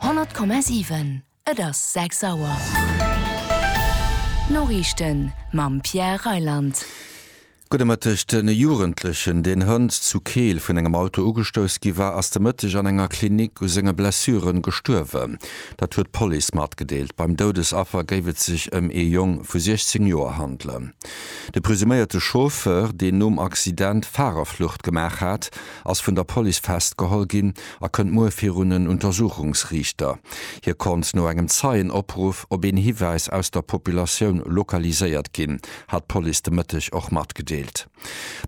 100,7 Et ass 6 Auer. D'Noriichten mam Pierre Reyland. Gudde Mëtteg. De Jugendlechen, deen hënt zu Keel vun engem Auto ugestouss gi war, ass de Mëtteg an enger Klinik u senge Blessure gestuerwen. Dat huet d'Police matgedeelt. Beim Doudesaffer géif et sech ëm ee Jong vu 16 Joer handelen. De presuméierte Chauffeur, deen nom Accident Farerflucht gemaach hat, ass vun der Police festgeholl ginn a kënnt muer virun en Untersuchungsriichter. Hie konnt no engem Zeienopruff op een Hiwäis aus der Populatioun lokaliséiert ginn, hat d'Police de Mëtteg och matgedeelt.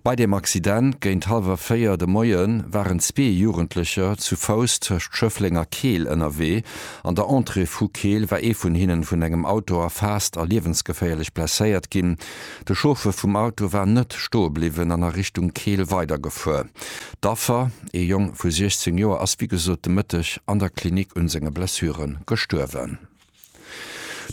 Bei deem Accident géint hallwer véier de Moie waren zwee Jugendlecher zu Fouss tëscht Schëffleng a Keel ënnerwee. An der Entrée vu Keel war ee vun hinnen vun engem Auto erfaasst a liewensgeféierlech blesséiert ginn. De Chauffer vum Auto war net stoe bliwwen an a Richtung Keel weidergefuer. D'Affer, ee Jong vu 16 Joer, ass wéi gesot de Mëtteg an der Klinik un senge Blessure gestuerwen.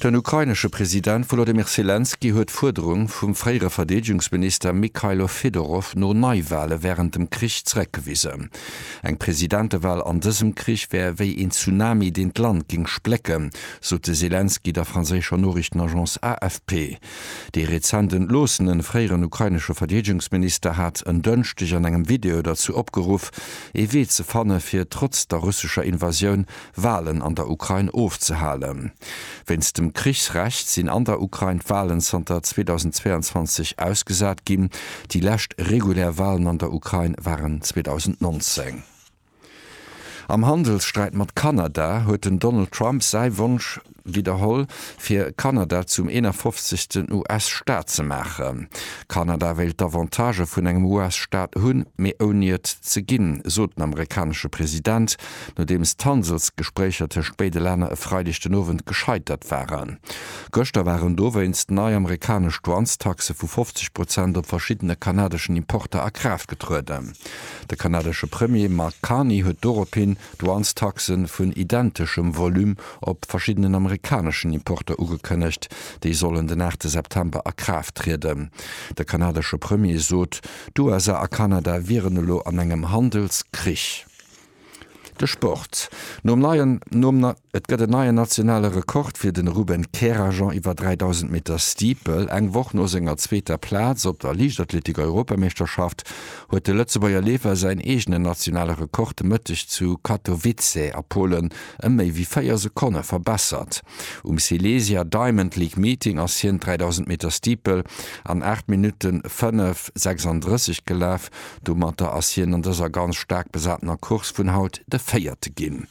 Den ukrainesche President Wolodymyr Selenskyj huet d'Fuerderung vum fréiere Verdeedegungsminister Mykhailo Fedorov no Neiwale wärend dem Krich zeréckgewisen. Eng Presidentewal an dësem Krich wär wéi een Tsunami, deen d'Land géing splécken, sot de Selenskyj der franséischer Noriichtenagence AFP. Dee rezent entloossenen fréieren ukrainesche Verdeedegungsminister hat en Dënschdeg an engem Video derzou opgeruff, ee Wee ze fanne fir trotz der russescher Invasioun Walen an der Ukrain ofzehalen. Wéinst dem Krichsrecht sinn an der Ukrain d'Walen zanter 2022 ausgesat ginn. Déi lescht regulär Walen an der Ukrain waren 2019. Am Handelssträit mat Kanada huet den Donald Trump säi Wonsch widderholl, fir Kanada zum 51. US-Staat ze maachen. Kanada wéilt d'Avantagë vun engem US-Staat hunn, mee ouni et ze ginn, sot den amerikanesche President, nodeems d'Handelsgespréicher tëscht béide Länner e Freideg den Owend gescheitert waren. Gëschter waren dowéinst nei amerikanesch Douanestaxe vu 50 Prozent op verschiddene kanadeschen Importer a Kraaft getrueden. De kanadesche Premier Mark Carney huet dorophin Douanestaxe vun identeschem Volume op verschiddenen amerikaneschen Importer ugekënnegt. Déi sollen den aachte September a Kraaft trieden. De kanadesche Premier sot, d'USA a Kanada wieren elo an engem Handelskrich. De Sport, Nom neien nom Et gëtt en neien nationale Rekord fir de Ruben Kerajan iwwer 3000 Meter Steeple. Eng Woch no senger zweeter Plaz op der Liichtathletik-Europameeschterschaft huet de Lëtzebuerger Leefer säin eegenen nationale Rekord de Mëtteg zu Katowice a Polen ëm méi wéi 4 Sekonne verbessert. Um Silesia Diamond League Meeting ass hien d'dräidausend Meter Steeple an 8 Minutten 5 36 gelaf. Domatter ass hien an dëser ganz staark besatener Course vun haut de Véierte ginn.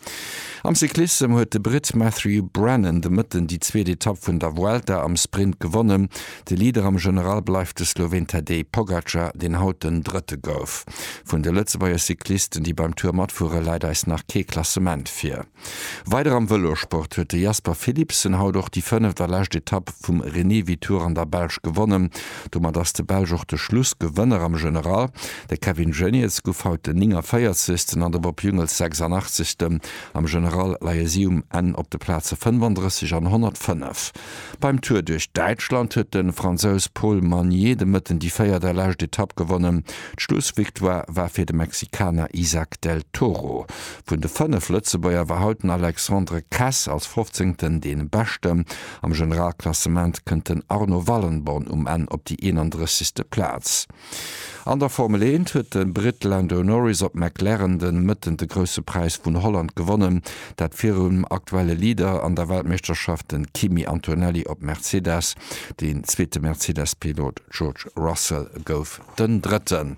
Am Cyclissem huet de Britt Matthew Brennan de Mëtten déi zweet Etapp vun der Vuelta am Sprint gewonnen. De Leader am General bleift de Sloween Tadej Pogacar, deen haut den Drëtte gouf. Vun de Lëtzebuerger Cyclisten, déi beim Tour matfueren, läit eis nach kee Klassement vir. Weider am Vëlosport huet de Jasper Philipsen haut och déi fënneft a lescht Etapp vum Renewi Tour an der Belsch gewonnen. Domat ass de Belsch och de Schlussgewënner am General. De Kevin Geniets gouf haut den 49. an de Bob Jungels 86. Am General leie si um Enn op de Plaze 35 an 105. Beim Tour duerch Däitschland huet de Fransous Paul Magnier de Mëtten déi véiert a lescht Etapp gewonnen. D'Schlussvictoire war fir de Mexikaner Izack del Toro. Vun de 5 Lëtzebuerger war haut den Alexandre Kress als Fofzéngten dee Beschten. Am Generalklassement kënnt den Arno Wallenborn um Enn op déi 31. Plaz. An der Formel 1 huet de Britt Lando Norris op McLaren de Mëtten de Grousse Präis vun Holland gewonnen. Dat virum aktuelle Leader an der Weltmeeschterschaft, de Kimi Antonelli op Mercedes. Deen zweete Mercedes-Pilot George Russell gouf den Drëtten.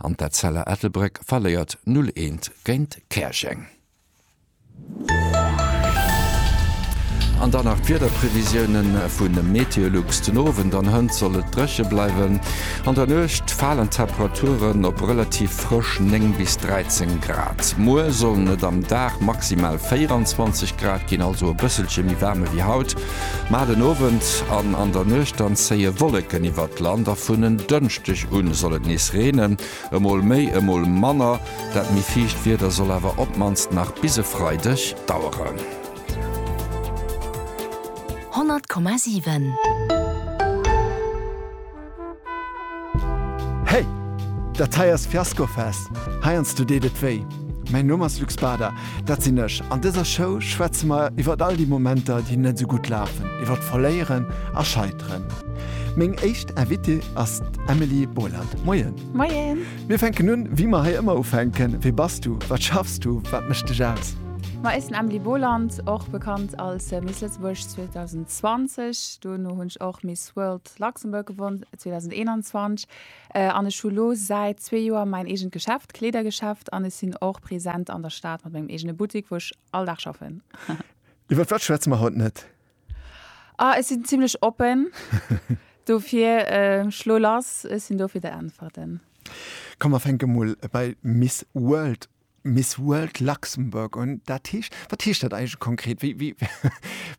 an d'Etzella Ettelbréck verléiert 0 eent géint Käerjeng. An dann nach d'Wiederprevisioune vu Meteolux, Den Owend an Hënt soll et dréche bleiwen, an der Nuecht falen d'Temperaturen op relativ frësch 9 bis 13 Grad. Muer sollen et am Dag maximal 24 Grad ginn, also e bësselche méi waarm ewéi haut. Mar den Owend an an der Nuecht dann zéie Wolleken iwwert d'Land a vun en Dënschdeg u soll et nees reenen, emol méi, emol manner. Dat méi fiicht Wieder soll awer op d'mannst nach bis e Freideg daueren. 100,7. Hey! Dat hei ass Fiasco Fest, heiansdo deet et wéi. Mäin Numm ass Luc Spada, dat sinn ech. An dëser Show schwätze mer iwwert all déi Momenter, déi net esou gutt lafen, iwwert Verléieren a Scheiteren. Meng éischt Invitée ass d'Emily Boland. Moien! Moien! Mir fänken un, wéi mer hei ëmmer ufänken, Wie bass du? Wat schaffs du? Wat mécht dech aus? Ma ech sinn Emily Boland, och bekannt als Miss Lëtzebuerg 2020. Duerno hunn ech och Miss World Luxembourg gewonn 2021 an ech hu lo säit zwee Joer mäin eegent Geschäft, Kleedergeschäft an ech sinn och present an der Stad mat mengem eegene Buttik wou ech all Dag schaffen. Iwwer wat schwätze mer haut net? Ah ech sinn zimlech oppen, dofir schlo lass, ech sinn do fir der Äntwerten. Komm mer fänke mol bei Miss World Miss World Luxembourg un. Dat heescht, wat heescht dat eigentlech konkret? Wéi, wéi,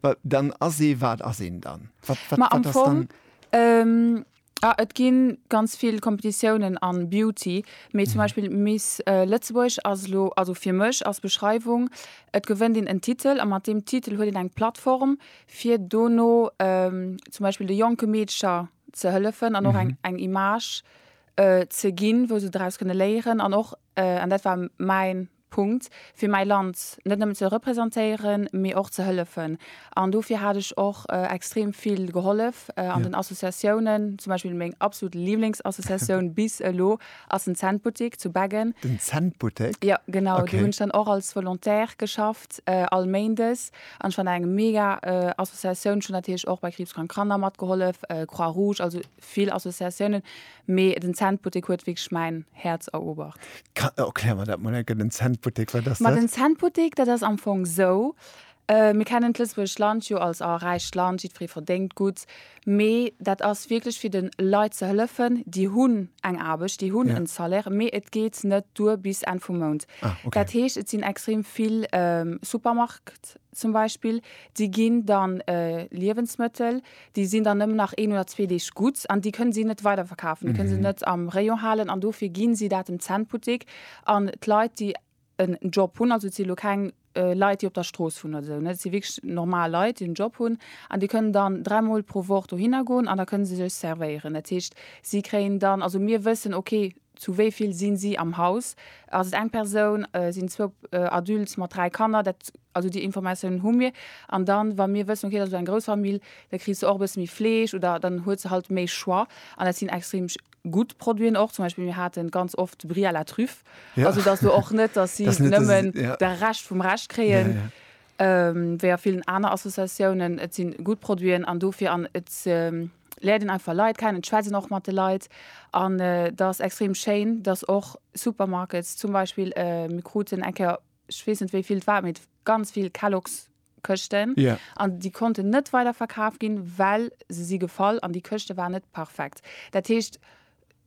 wa, dann ass ee, wat ass een dann? Wat, wat, Ma am wat ass Fong, dann? ähm, ah, et gi ganz vill Kompetitiounen a Beauty, mee zum Beispill Miss äh, Lëtzebuerg ass elo, also fir mech als Beschreiwung, et gewënnt een en Titel a mat deem Titel huet een eng Plattform, fir dono ähm, zum Beispill de jonke Meedcher ze hëllefen an och eng, eng Image äh, ze ginn, wou se draus kënne léieren an och an dat war mäin Punkt, fir mäi Land net nëmmen ze representéieren, mee och ze hëllefen. An dofir hat ech och extrem vill gehollef an den Associatiounen, zum Beispill meng absolut Liblingsassociatioun bis elo ass den Centbuttek zu Beggen. Den Centbuttek? Jo, genau. Do hunn ech dann och als Volontaire geschafft, all Méindes. An ech fand dat eng mega Associatioun. Ech hunn natierlech och bei Kriibskrank Kanner matgehollef, Croix-Rouge, also. vill Associatiounen, mee den Centbuttek huet wierklech mäin Häerz eroobert. Erklär mer dat mol enke, den Centbuttek, wat ass dat? Ma den Centbuttek, dat ass am Fong esou, mir kennen d'Lëtzebuergescht Land jo als, oh, räicht Land, jiddweree verdéngt gutt, mee dat ass wierklech fir de Leit ze hëllefen, déi hunn eng Aarbecht, déi hunn en Salaire, mee et geet net duer bis Enn vum Mount. Dat heescht, et sinn extrem vill Supermark. Rest zum Beispill, déi ginn dann Liewensmëttel, déi sinn dann nëmmen nach een oder zwee Deeg gutt an déi kënne si net weiderverkafen, déi kënne se net am Rayon halen an dofir gi si dat dem Cent-Buttek an d'Leit, déi en Job hunn, also et si elo keng Leit, déi op der Strooss wunnen oder esou, et si wierklech normal Leit, déi en Job hunn an déi kënnen dann dräimol pro Woch dohinner goen an da kënne se sech servéieren. Dat heescht, si kréien dann, also mir wëssen, okay, Zu wéi vill sinn si am Haus? Ass et eng Persoun? Sinn zwou Adultes mat dräi Kanner? Dat, also déi Informatiounen hu mir. An dann, wa mir wëssen, okay, dat ass elo eng grouss Famill, da kriss se och e bësse méi Fleesch oder dann huet se halt méi Choix. An dat sinn extrem gutt Produiten och. Zum Beispill, mir hate ganz oft de Brie à la Truffe. Also et ass elo och net, dass si nëmmen de Rescht vum Rescht kréien, wéi a villen aner Associatiounen. Et si gutt Produiten an dofir, an et, läert een einfach Leit kennen, d'Schwätzen och mat de Leit an dat ass extrem schéin, dass och Supermarkets zum Beispill, mir kruten eng Kéier, ech weess net wéi vill et war, mee ganz vill Kellogs Këschten an déi konnten net weiderverkaf ginn, well se si gefall an déi Këschte waren net perfekt. Dat heescht,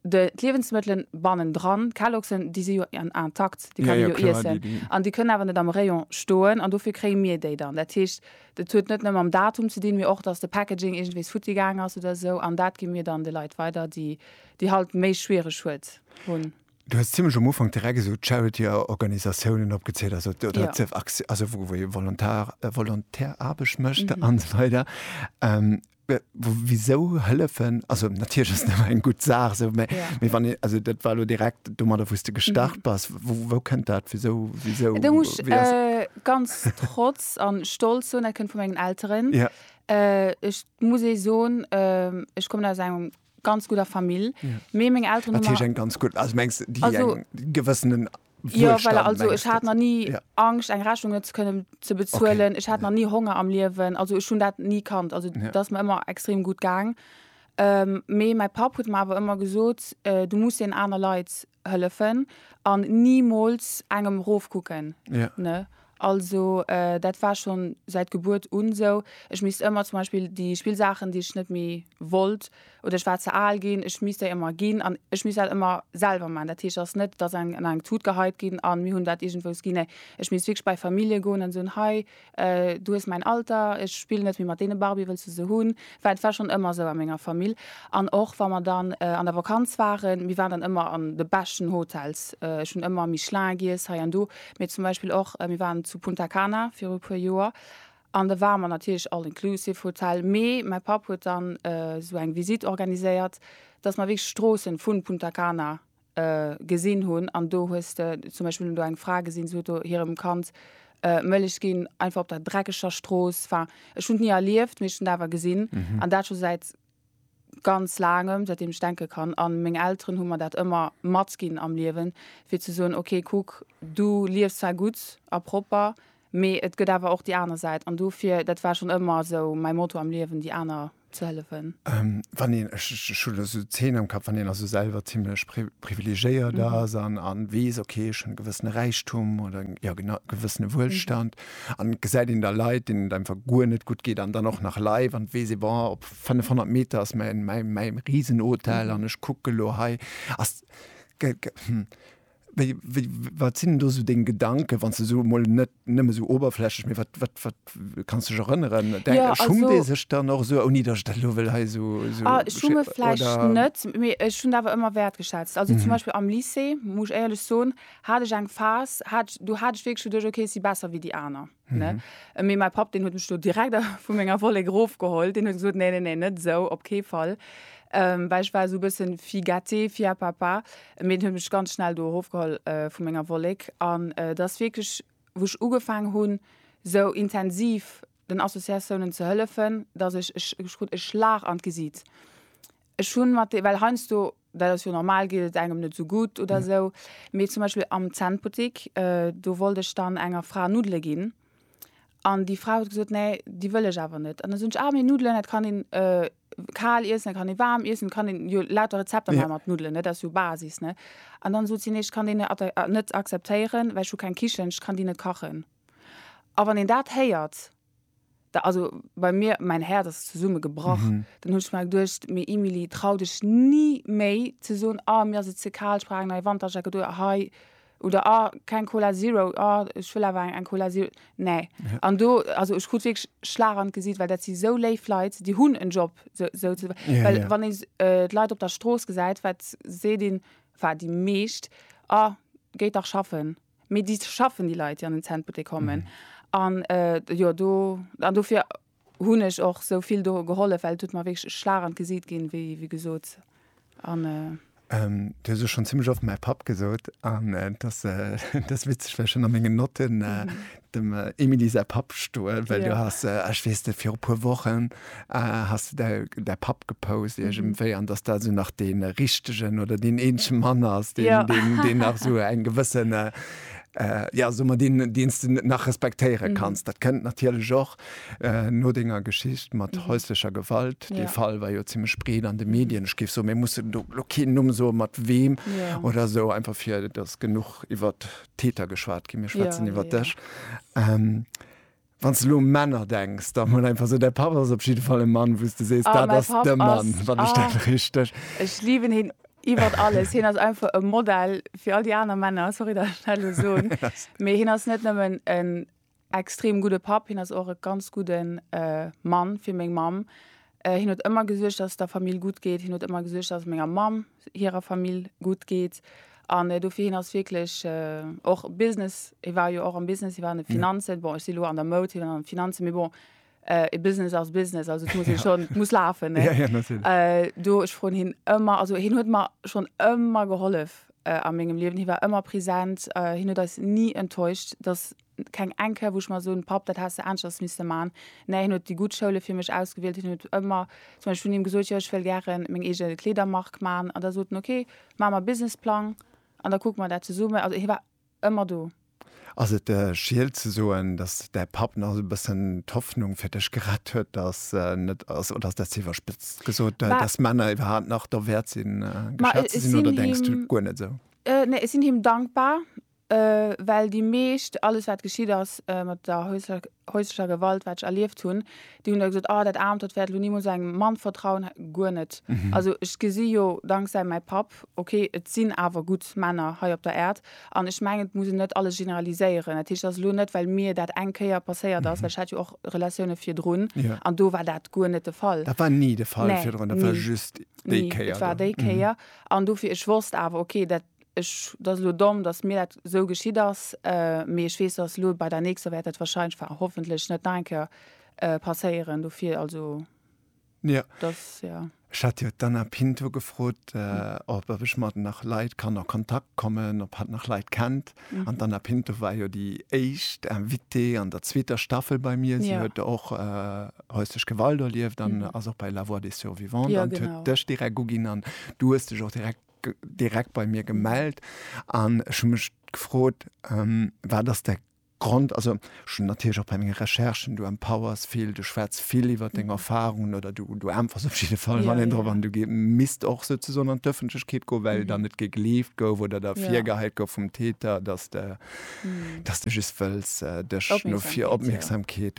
De d'Liewensmëttelen bannendran, d'Kaloxen, déi si jo intakt, déi kann ee jo iessen. An déi kënnen awer net am Rayon stoen an dofir kréie mir déi dann. Dat heescht, dat huet net nëmme mam Datum ze dinn, mee och, dass de Packaging iergendwees futti gaang ass oder esou. An dat gi mir dann de Leit weider, déi déi halt méi schwiereg huet hunn. Du hues zimlech um Ufank direkt esou d'Charity-Organisatiounen opgezielt, also oder ze, also wou ee Volontar, Volontärarbecht mécht an esou weider. Wisou hëllefen, also natierlech ass et ëmmer eng gutt Saach esou, mä wann een, also dat war elo direkt domadder wou s de gestart bass, wou kënnt dat, wisou, wisou, wéi ass. Do muss ech ganz trotz a stolz soen, dat kënnt vu mengen Elteren. Ech muss ee soen, ech kommen aus engem ganz gudder Famill mee meng Elteren hu mer ganz gutt also mengs déi also gewëssenen jo well also ech hat nach ni Angscht eng Rechnung net ze kënnen ze bezuelen okay ech hat nach ni Honger am Liewen also ech hunn dat ni kannt also dat ass mer ëmmer extrem gutt gaang mee mäi Papp huet mer awer ëmmer gesot du muss een aner Leit hëllefen an nimools engem rofkucken ja. ne also äh, dat war schon säit Gebuert un esou ech misst ëmmer zum Beispill déi Spillsaachen déi ech net méi wollt oder ech war ze al ginn ech misst déi ëmmer ginn an ech misst dat ëmmer selwer man dat heescht ass net dass eng an eng Tut geheit ginn an mir hunn dat iergendwous ginn nee ech misst wierklech bei Famillje goen an soen hei Du hues mäin Alter, ech spillen net méi mat deene Barbie, wëlls du se hunn? Well et war schonn ëmmer esou a menger Famill. An och wa mer dann an der Vakanz waren, mir waren dann ëmmer an de beschten Hotels. Ech hunn ëmmer Michelin giess hei an do, mee zum Beispill och, mir waren zu Punta Cana viru e puer Joer an da ware mer natierlech All-Inclusive Hotel, mee mäi Papp huet dann esou eng Visite organiséiert, dass mer wierklech d'Stroossen vu Punta Cana gesinn hunn an do hues de zum Beispill hunn do eng Fra gesinn, se huet do hirem Kand Mëllech ginn, einfach op der dreckeger Strooss. Enfin, ech hunn et ni erlieft, mee ech hunn et awer gesinn an dat scho säit ganz Laangem, säitdeem ech denke kann. A meng Elteren hu mer dat ëmmer matginn am Liewen, fir ze soen, ok, kuck, du liefs zwar gutt a propper, mee et gëtt awer och déi aner Säit. An dofir, dat war schonn ëmmer esou mäi Motto am Liewen, déi aner ze hëllefen? Wann een, ech hu lo sou Zeen am Kapp, wann een also selwer zimlech privilegéiert ass a weess, ok, ech hunn e gewëssene Räichtum oder e gewëssene Wuelstand a gesäit een da Leit, deenen et einfach guer net gutt geet an dann och nach live an weess ee, bon, op 500 Meter ass mäi Risenhotel an ech kucke lo hei. Wéi, wéi, wat sinn do esou deng Gedanken, wann s de esou emol net nëmme esou oberflächlech, mee wat, wat, wat kanns du dech erënneren? Denk, Ja, schummt ee also, sech dann och esou, ouni datt ech dat elo wëll hei esou, esou ah, sche, schumme vläicht oder? net, mee ech hunn dat awer ëmmer wäertgeschätzt. Also zum Mhm. Beispill am Lycée, muss ech éierlech soen, hat ech eng Phas, hat ech, do hat ech wierklech geduecht, okay, ech si besser wéi déi aner. Ne? Mhm. Äh, Mee mein Papp, den huet mech do direkt vu menger Wollek erofgeholt. Den huet gesot, nee, nee, nee, net esou, op kee Fall. Ähm, well ich war so e bëssen fi gâté, fi à papa. Mee den huet mech ganz schnell do erofgeholl äh, vu menger Wollek. An äh, das wirklich, wo ich ugefangen hun, so intensiv den Associatiounen ze hëllefen, dass ich, ich, ich krut e Schlag an d'Gesiit. Ech hun mat de, well heiansdo dat ass jo normal, geet et engem net sou gutt oder esou, mee zum Beispill am Zännbuttik, do wollt ech dann enger Fra Nuddele ginn an déi Fra huet gesot, nee, déi wëll ech awer net. An da soen ech, ah, mee Nuddelen, dat kann een kal iessen, dat kann ee waarm iessen, et kann een jo lauter Rezepter maache mat Nuddelen, dat ass jo Basis, ne. An dann sot si, nee, ech kann déi net akzeptéieren, well ech hu keng Kichen, ech kann déi net kachen. A wann een dat héiert. Da also bei mir, mäin Häerz ass zesumme gebrach. Dann hunn ech mer geduecht, mee Emilie, trau dech ni méi ze soen, ah mir ass et ze kal, ech brauch eng nei Wanterjacket oder hei, oder ah keng Cola Zero, ah ech wëll awer eng Cola Zero. Nee. An do, also ech krut wierklech Schlag an d'Gesiit, well dat si sou léif Leit, déi hunn en Job, sou ze, well wann ee d'Leit op der Strooss gesäit, wat seet een, enfin déi meescht, ah géi dach schaffen. Mee déi schaffen, déi Leit, déi an den Centbuttek kommen. An jo, do, an dofir hunn ech och esou vill do gehollef, well et huet mer wierklech e Schlag an d'Gesiit ginn, wéi, wéi gesot. An. Du hues ech schonn zimmlech oft mäi Papp gesot. An et ass, et ass witzeg, well ech hunn a mengen Notten dem Emilie säi Papp stoen, well du has, ech weess net, viru puer Wochen has de däi däi Papp gepost iergendwéi an datt dat esou nach dee richtegen oder deen eenzege Mann ass, deen deen deen nach esou eng gewësse, jo soe mer, deen deen s de nach respektéiere kanns. Dat kënnt natierlech och no denger Geschicht mat häuslecher Gewalt. Dee Fall war jo zimmlech breet an de Medien. Ech géif soen, mir mussen do lo keen Numm soe mat weem oder esou, einfach fir datt genuch iwwert Täter geschwat ginn, mir schwätzen ja, iwwer dech. Ja. Ähm, Wann du lo Männer denkst, da mal einfach so der Papa ist auf jeden Fall ein Mann, wo du sest, ah, da ist der Mann, ist, wann ah, ich das richtig. Ich liebe ihn iwwer alles hin ass einfach e Modell fir all die aner Männer sorry der Stelle so méi hin ass net nëmmen en Extrem gudde Papp, hien ass och e ganz gudde Mann fir meng Mamm. Hien huet ëmmer gesuergt, dass et der Famill gutt geet. Hien huet ëmmer gesuergt, dass et menger Mamm hirer Famill gutt geet. An dofir, hien ass wierklech och Business, hie war jo och am Business, hie war an de Finanzen, bon ech si elo an der Moud, hien an de Finanzen, mee bon, Äh, Business as Business, also muss ja. schon, muss lafen ja, ja, äh, do ech fro hin ëmmer also hin huet mar schon ëmmer gehollef äh, a mengegem Liwen hi war ëmmer präsent äh, hin huet eis nie enttäuscht dass keng enke woch mal so un pap dat hast anschers miss man ne hin huet die gut Schoule fir mech ausgewählt hin huet ëmmer zum Beispiel hun im gesot joch well gern meng egel Kleder mark man an der soten okay ma ma businessplang an da guck man dat ze summen also hi war Ëmmer do. Ass et Schield ze soen, dass däi Papp nach esou e bëssen d'Hoffnung fir dech gerett huet, dass en net ass, oder ass dat ze iwwerspëtzt gesot, dass Männer iwwerhaapt nach derwäert sinn, geschat ze sinn, oder denks du guer net esou? Nee, ech sinn him dankbar, well déi meescht, alles wat geschitt ass mat der häuslecher Gewalt, wat ech erlieft hunn, Déi hunn da gesot, ah, dat Aarmt, dat wäert elo nimools engem Mann vertrauen. Guer net. Also ech gesi jo danksäi mäi Papp, okay, et sinn awer gutt Männer hei op der Äerd. An ech mengen, et muss een net alles generaliséieren. Dat heescht, et ass elo net, well mir dat eng Kéier passéiert ass, well ech hat jo och Relatioune virdrun an do war dat guer net de Fall. Dat war ni de Fall virdrun, dat war just déi Kéier do? Nee, dat war déi Kéier. An dofir, ech wosst awer, okay, dat Ech, et ass elo domm, datt mir dat esou geschitt ass, mee ech weess, datt elo bei der nächster wäert dat wahrscheinlech, enfin hoffentlech, net nach eng Kéier passéieren. Dofir also, Jo, dass, jo. Ech hat jo d'Anna Pinto gefrot, ob, ob ech mat nach Leit kann a Kontakt kommen, ob hatt nach Leit kennt. An d'Anna Pinto war jo déi éischt Invitée an der zweeter Staffel bei mir. Si huet och Häusleche Gewalt erlieft an ass och bei La Voix des Survivants an huet dech direkt uginn an du hues dech och direkt direkt bei mir gemellt an ech hun mech gefrot ähm, wat ass de Grond, also ech hun natierlech och bei menge Recherchen, du empowers vill, du schwätz vill iwwer deng Erfarungen oder du, du äntwers op jidde Fall wann een drop an du misst och souzesoen an d'Ëffentlechkeet goen, well dann net gegleeft gouf oder der virgehäit gouf vum Täter, dass de, dass de just wëlls dech no fir Opmierksamkeet,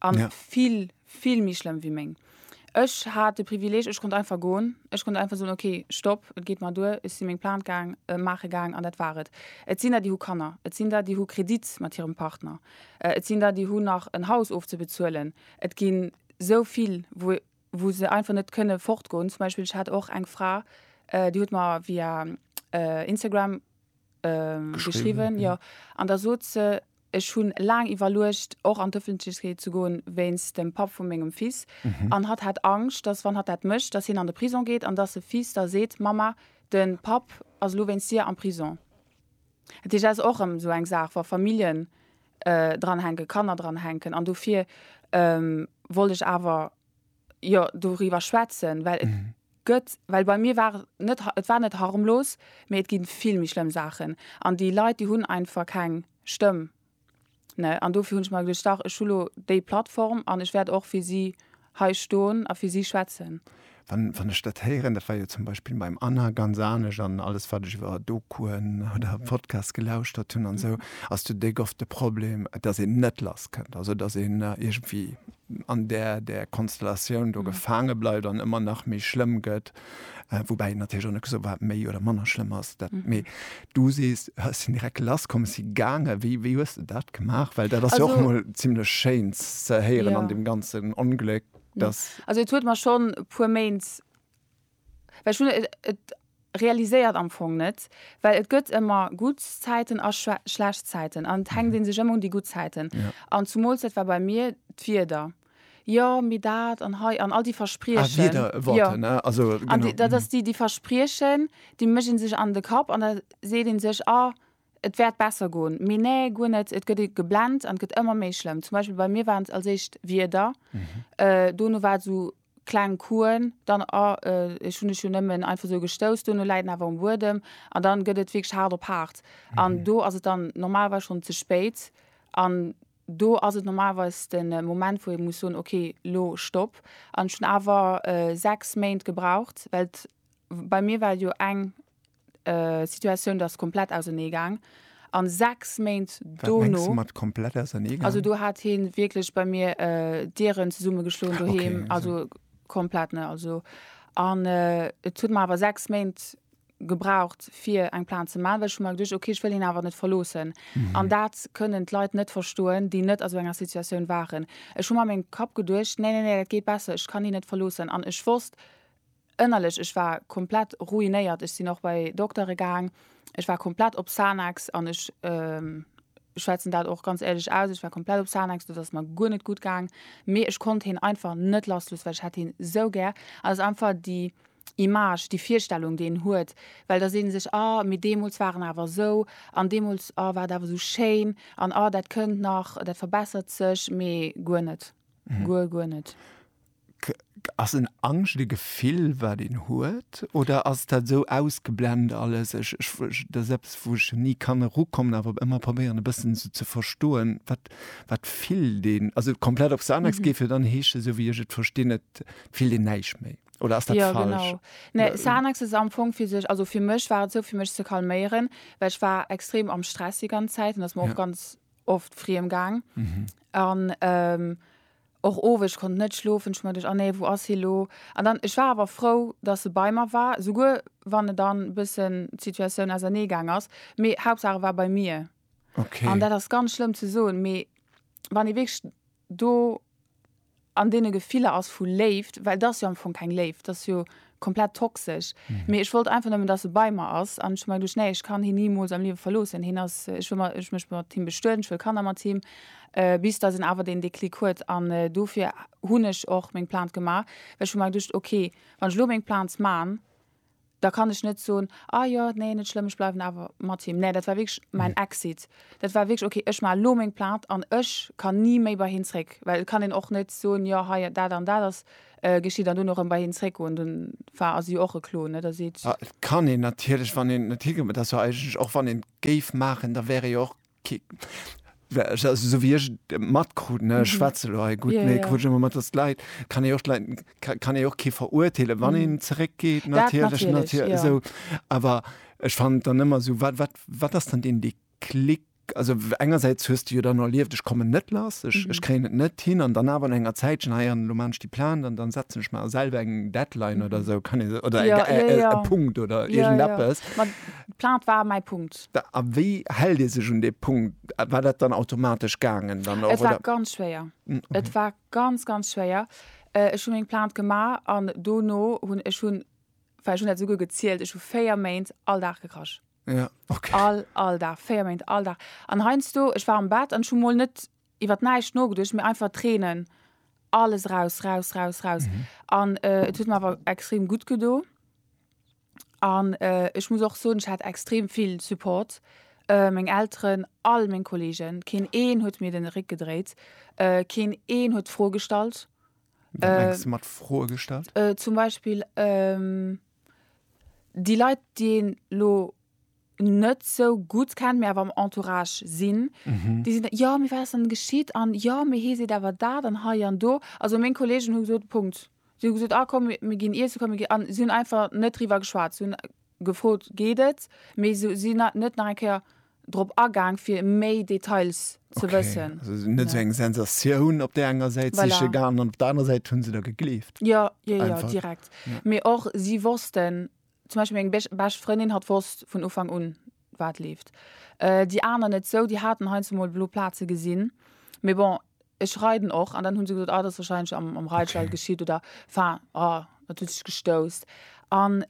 An ja. vill, vill méi schlëmm wéi meng. Ech hat de Privileg, ech konnt einfach goen. Ech konnt einfach soen, okay, stopp, et geet mer duer, ech sinn meng Plainte gaang, äh, maache gaang an dat war et. Et sinn der, déi hu Kanner, et sinn der, déi hu Kredit mat hirem Partner, äh, et sinn der, déi hunn nach en Haus ofzebezuelen. Et ginn sou vill, wou, wou se einfach net kënne fortgoen. Zum Beispill, ech hat och eng Fra, äh, déi huet mer via äh, Instagram äh, geschriwwen, ja, an da sot se, Ech hunn laang iwwerluecht och an d'Öffentlechkeet ze goen wéinst dem Papp vu mengem Fils an hat hat Angscht, dass wann hat dat mécht, dass hien an de Prisong geet an dass e Fils da seet, Mamma, den Papp ass elo wéinst dir am Prisong. Dat heescht, dat ass och erëm esou eng Saach, wa Familljen dranhänken, Kanner dranhänken an dofir wollt ech awer, jo doriwwer schwätzen, well et gëtt, well bei mir war net, et war net harmlos, mee et gi vill méi schlëmm Saachen an déi Leit, déi hunn einfach keng Stëmm, ne? An dofir hunn ech mer geduecht, dach, ech hu lo déi Plattform an ech wäert och fir si hei stoen a fir si schwätzen. Wann, wann ech dat héieren, dat war jo zum Beispill beim Anna ganz anescht an alles, wat ech iwwer Dokuen oder Podcasts gelauschtert hunn an esou, ass de dégofte Problem, dass een net lass kënnt, also dass een iergendwéi an där där Konstellatioun do gefaange bleift an ëmmer nach méi schlëmm gëtt, woubäi et natierlech och net gesot, wat méi oder manner schlëmm ass. Dat, mee du sees, ech sinn direkt lasskom, ech si gaange. Wéi, wéi hues de dat gemaach? Well dat ass jo och Also, emol zimlech Schéins ze héieren an ja. deem ganzen Ongléck, dass. Also et huet mer schonn e puer Méint Well ech hunn et realiséiert am Fong net, well et gëtt ëmmer gutt Zäiten a schlecht Zäiten an et hänkt ee sech ëmmer un déi gutt Zäiten. An zumools, dat war bei mir d'Wieder, jo mee dat an hei an all déi Verspriechen, jo an dat ass déi déi Verspriechen, déi mécht ee sech an de Kapp an da seet ee sech, ah et wäert besser goen, mee nä guer net, et gëtt ee geblent an et gëtt ëmmer méi schlëmm. Zum Beispill bei mir waren et als éischt d'Wieder, dono war et esou kleng Kuen dann a, ech hunn dech jo nëmmen einfach sou gestouss, dono läit en awer um Buedem an dann gëtt et wierklech haart op haart an do ass et dann normalerweis schonn ze spéit an do ass et normalerweis de Moment wou ee muss soen ok lo Stopp an ech hunn awer 6 Méint gebraucht well bei mir war et jo eng Situatioun ass komplett ausernee gaang an 6 Méint dono. mat komplett ausernee gaang? Also do hat hie wierklech bei mir Dieren zesumme geschloen doheem, also komplett ne. Also an et huet mer awer 6 Méint gebraucht fir eng Plainte ze man, well ech hu mer geduecht ok ech wëll hien awer net verloossen an dat kënnen d'Leit net verstoen déi net a sou enger Situatioun waren. Ech hu mer a mengem Kapp geduecht, nee nee nee dat geet besser, ech kann hien net verloossen an ech wosst Ënnerlech, ech war komplett ruinéiert. Ech sinn och bei Doktere gaang. Ech war komplett op Xanax an ech schwätzen dat och ganz éierlech aus, ech war komplett op Xanax, do ass mer guer net gutt gaang. Mee ech konnt hien einfach net lassloossen, well ech hat hien esou gär. An et ass einfach déi Image, déi Virstellung, déi een huet, well da seet ee sech, ah, mee deemools war en awer esou an deemools, ah, war et awer esou schéin an ah, dat kënnt nach, dat verbessert sech. Mee guer net, guer, guer net. K, K, Ass en Angscht e Gefill, wat een huet, oder ass dat esou ausgeblent alles? Ech, ech, ech, dat ass eppes, wou ech ni kann erukommen, awer ëmmer probéieren, e bëssen esou ze verstoen, wat, wat fillt een? Also komplett op Xanax geet, wier dann heesche, esou wéi ech et verstinn, et fillt een näischt méi. Oder ass dat falsch? Jo, genau. Nee, Xanax ass am Fong fir sech, also fir mech war et esou, fir mech ze calméieren, well ech war extrem am Stress déi ganz Zäit an et ass mer och ganz. Ja. oft friem gaang an ähm och owes ech konnt net schlofen ech mer dech an nee wou ass hie lo an dann ech war awer frou dass se bei mer war souguer wann et dann bëssen d'Situatioun ausernee gaang ass mee Hauptsache war bei mir an dat ass ganz schlëmm ze soen mee wann ee wierklech do an deene Gefiller ass vu Léift, well d'ass jo am Fong keng Léift, d'ass jo komplett toxesch. Mee ech wollt einfach nëmmen, dass e bei mer ass an ech hu mer geduecht, nee, ech kann hien nimools am Liewe verloossen. Hien ass, ech wëll mer, ech mécht mat him bestueden, ech wëll Kanner mat him, bis dass een awer deen Déclic huet. An dofir hunn ech och meng Plainte gemaach, well ech hu mer geduecht, okay, wann ech elo meng Plainte man, da kann ech net soen, ah jo, nee, net schlëmm, ech bleiwen awer mat him. Nee, dat war wierklech mäin mhm. Exit. Dat war wierklech, okay, ech maache lo meng Plaat an ech kann ni méi bei hien zréck. Well et kann een och net soen, jo, hei, dat an dat ass äh, geschitt an dunn och ëm bei hien zréckgoen. Dann war ass jo och e Klo, ne? Da seet. Ah, et kann een natierlech, wann een net higeet, dat ass jo eigentlech och, wann een géif maachen, da wär ee jo och Kick. So wie ech matkruten mhm. schwätze lo gut yeah, nee, yeah. immer mat das Leiit kann e och kann e och ke verurteile wann mhm. en zeréck geht natierlech natierlech ja. so awer ech fand dann ëmmer so wat wat wat ass dann den de klick also engerseits hörst du dann erlieft ich komme net lass ich, mhm. ich kre net hin an dann aber enger Zeit schon heieren ah du manst die plan dann dann setzen ich mal selber eng deadline mhm. oder so kann ich oder ja, äh, ja, äh, ja. Punkt oder ja, ja. plan war mein Punkt A wéi hält ee sech un dee Punkt? War dat dann automatesch gaangen dann och, oder? Et war ganz schwéier. Et war ganz, ganz schwéier. Ech hu meng Plainte gemaach an dono hunn ech hunn, well ech hunn dat esouguer gezielt, ech hu véier Méint all Dag gekrasch. Ja, okay. All, all Dag, véier Méint all Dag. An heiansdo, ech war am Bett an ech hu mol net iwwer näischt nogeduecht, mee einfach Tränen, alles raus, raus, raus, raus. An et huet mer awer extrem gutt gedo. An ech muss och soen, ech hat extrem vill Support, meng Elteren, all meng Kolleegen, keen een huet mir den Réck gedréit, keen een huet Froe gestallt. Wat mengs de mat Froe gestallt? Zum Beispill déi Leit, déi een elo net esou gutt kennt, mee awer am Entourage sinn, déi sinn dann, jo mee wat ass dann geschitt an jo mee hie seet awer dat an hei an do. Also meng Kolleegen hu gesot, Punkt. Si hu gesot, ah komm mir ginn iessen, komm mir ginn. An si hunn einfach net driwwer geschwat. Si hunn gefrot, geet et? Mee se sinn net nach eng Kéier drop agaang, fir méi Details ze wëssen. Okay. Also net sou eng Sensatioun op där enger Säit siche gaangen an op der anerer Säit hu se der gegleeft. Jo, jo, jo, direkt. Mee och si wossten, zum Beispill meng bescht Frëndin hat wosst vun Ufank un wat leeft, déi aner net sou, déi haten heiansdo mol blo Plaze gesinn, mee bon ech reiden och an dann hunn se gesot ah dat ass wahrscheinlech am am Reitstall geschitt oder enfin ah dat huet sech gestousst an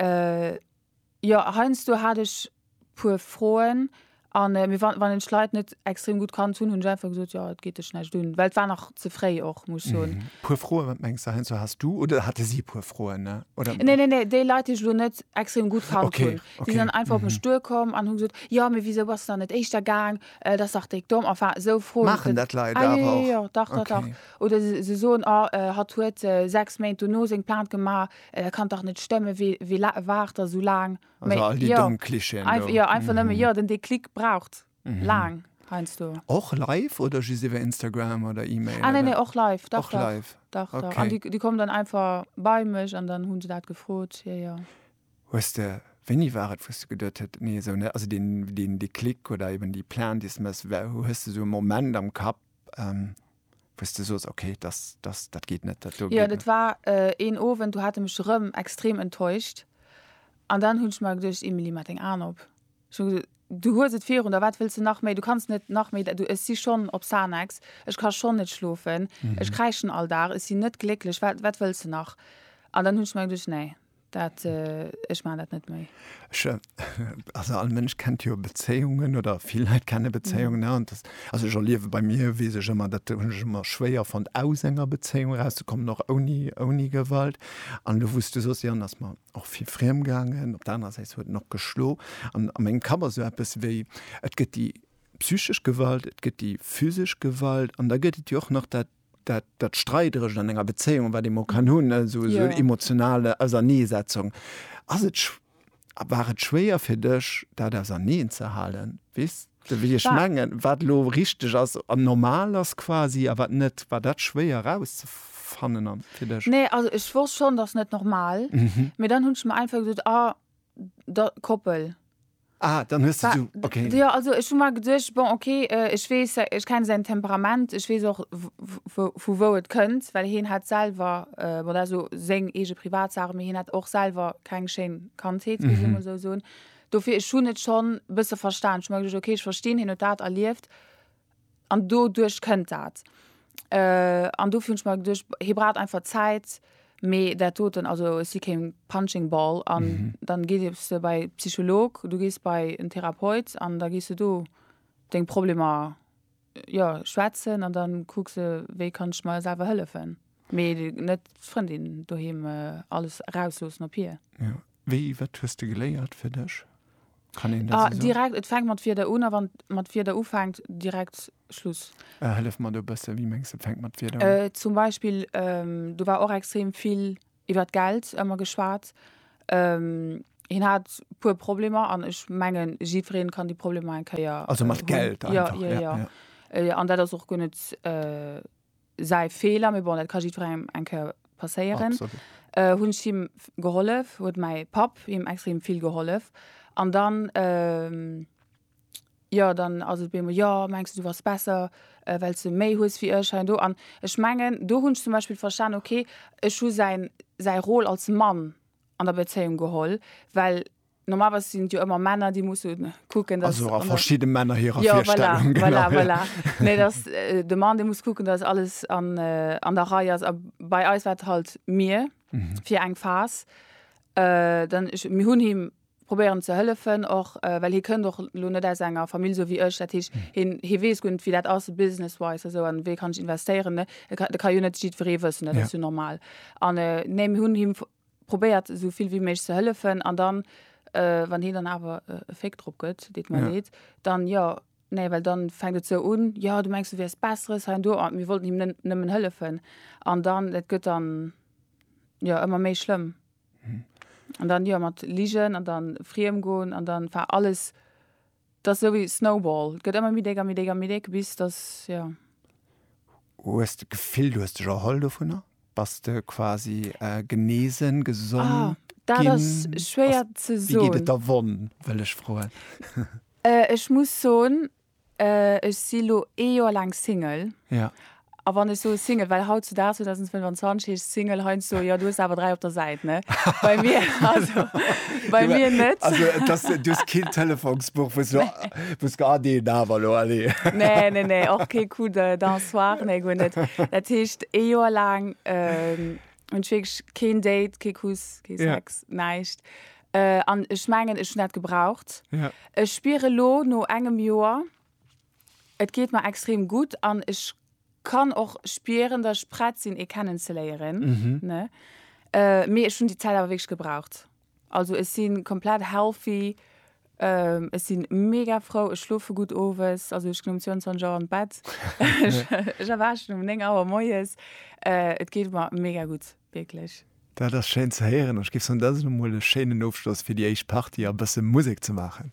jo heiansdo hat ech puer Froen an mir wann wann ech Leit net extrem gutt kannt hunn, hunn ech einfach gesot jo et geet dech näischt un, well et war nach ze fréi och muss ech soen. Puer Froen, wat mengs de heiansdo has du oder hate si puer Froen, ne oder? Nee nee nee, déi Leit déi ech lo net extrem gutt kannt hunn, déi sinn okay. dann einfach op mech duer komm an hu gesot, jo mee wisou bass de dann net éischter gaang, dat ass dach déck domm, enfin esou Froen. Maachen dat Leit awer och? Ah jo jo jo, dach dach dach, oder se se soen ah hatt huet 6 Méint dono seng Plainte gemaach, dat kann dach net stëmmen, wie wie la waart der esou laang? Also all déi domm Klischeeën do. Einfach, jo, einfach nëmme, jo, den Déclic braucht laang heiansdo. Och live oder just iwwer Instagram oder E-Mail? Ah, nee, nee, och live, dach, dach. Och live? Dach, dach. An déi kommen dann einfach bei mech an dann hu se dat gefrot, jo, jo. Hues de, wéini war et, wou s de geduet huet, nee, esou net, also deen Déclic oder eben déi Plainte, déi s de méchs, hues de esou e Moment am Kapp? wou's de soos ok dass dass dat geet net dat do geet net. Jo dat war een Owend do hat en mech rëm extrem enttäuscht an dann hunn ech mer geduecht Emilie maach deng Aan op ech hunn gesot du hues et virun der wat wëlls de nach méi du kanns net nach méi du ech si schonn op Xanax ech ka schonn net schlofen ech kräischen all Dag ech sinn net glécklech wat wat wëlls de nach an dann hunn ech mer geduecht nee Dat, ech maachen dat net méi. Ech, also all Mënsch kennt jo Bezéiungen oder vill Leit kenne Bezéiungen. An das, also ech erliewe bei mir, weess ech ëmmer, dat hunn ech ëmmer schwéier fonnt, aus enger Bezéiung erauszekommen, och ouni, ouni Gewalt. An elo, wou s du sos, jo, an ass mer och vill friem gaangen, op der anerer Säit huet en och geschlo. An a mengem Kapp ass esou eppes wéi, et gëtt déi psychesch Gewalt, et gëtt déi physesch Gewalt an da gëtt et jo och nach dat, dat, dat Streiderecht an enger Bezéiung, wat ee mol kann hunn, esou, esou en emotionale Auserneesetzung. Ass et, a war et schwéier fir dech, dat auserneen ze halen? Weess de, wéi ech mengen? Wat elo richteg ass an normal ass quasi a wat net? War dat schwéier erauszefannen an fir dech? Nee, also ech wosst schonn, dat ass net normal. Mee dann hunn ech mer einfach gesot, a. Da, Koppel. Ah, dann hues du so, okay. Jo, also ech hu mer geduecht, bon, okay, ech weess, ech kenne säin Temperament, ech weess och, vu wou et kënnt, well hien hat selwer, bon, dat ass elo seng eege Privatsach, mee hien hat och selwer keng schéin Kandheet, muss ee mol esou soen. Dofir, ech hunn et schonn e bësse verstan. Ech hu mer geduecht, okay, ech verstinn, hien huet dat erlieft. An doduerch kënnt dat. An dofir hunn ech mer geduecht, hie braucht einfach Zäit. Mee dat doten, also ech si kee Punching Ball. An dann gees de bei e Psycholog, du gees bei en Therapeut an da gees de do deng Problemer, jo, schwätzen. An da kucks de, wéi kann ech mer selwer hëllefen. Mee net d'Frëndin doheem alles erausloossen op hir? Jo. Wéi, wat hues de geléiert fir dech? Kann een dat esou soen? Direkt, et fänkt mat Wierder un a wann et mat Wierder ufänkt, direkt Schluss. Hëllef mer do e bësse, wéi mengs de, et fänkt mat Wierder un? Zum Beispill, do war och extrem vill iwwert Geld ëmmer geschwat. Hien hat e puer Problemer an ech mengen, jiddweree kann déi Problemer eng Kéier hunn. Also mat Geld einfach? Jo, jo, jo. An dat ass och guer net säi Feeler, mee bon, dat ka jiddwerengem eng Kéier passéieren. Absolut. Äh, hunn ech him gehollef, huet mäi Papp him extrem vill gehollef. An dann, äh, jo, dann ass et op eemol, jo, mengs de, du bass besser, well s de méi hues wéi ech hei an do. An ech mengen, do hunn ech zum Beispill verstanen, okay, ech hu säin, säi Rôle als Mann an der Bezéiung geholl, well. Normalerweis sinn et jo ëmmer Männer, déi musse kucken, dass. Also a verschidde Männer hirer ja, Virstellung. Voilà, genau, voilà, voilà. nee, dass äh, de Mann, dee muss kucken, dass alles an, äh, an der Rei ass. A bei eis war et halt mir mhm. fir eng Phas. Äh, dann ich, mir hunn him probéieren ze hëllefen och äh, well hie kënnt och lo net aus enger Famill so wéi ech dat hech hm. hin hie wees gunnt wéi dat ass businesswise eso an wéi kann ich investéieren de ka jo net jiet veree wëssen dat ja. du normal an äh, ne hunn him probéiert esou vill wéi méiglech ze hëllefen an dann wann hien dann awer e Féck drop gëtt, deet mer leed, dann jo, nee, well dann fänkt et esou un, jo du mengs du wäers besseres hei an do an mir wollten him nëmmen hëllefen an dann et gëtt dann jo ëmmer méi schlëmm an dann jo mat Ligen an dann friem goen an dann enfin alles T'ass esou wéi Snowball, t'gëtt ëmmer méi déck a méi déck a méi déck, bis dass, jo. Hues de d'Gefill, du hues dech erholl dovunner? Bass de quasi genesen, gesond ginn? Ah, dat ass schwéier ze soen. Wéi geet et der Wonn, wëll ech froen? Ech muss soen, ech si lo ee Joer laang Single. Ja. A wann ech soe Single, well hautzudaags, 2025, heescht Single heiansdo, jo, du hues der awer dräi op der Säit, ne? Bei mir, also, bei mir net. Also, et ass, du hues keen Telefonsbuch, wou s du, wou s du, ah, deen awer elo, allez. Nee, nee, nee, och kee Coup de, d'un soir, nee, guer net. Dat heescht, ee Joer laang hunn ech wierklech keen Date, kee Kuss, kee Sex, näischt. An ech mengen, ech hunn dat gebraucht. Ech spieren elo, no engem Joer, Et geet mer extrem gutt an ech kann och spieren dass ech prett sinn ee kennen ze léieren ne mee ech hunn déi Zäit awer wierklech gebraucht. Also ech si komplett healthy, ech si mega frou, ech schlofe gutt owes, also ech ginn um 22 Auer an d'Bett, ech erwaachen um 9 Auer moies, et geet mer mega gutt wierklech. Dat ass schéin ze héieren an ech géif soen dat ass emol e schéinen Ofschloss fir déi éischt Partie a bësse Musek ze maachen.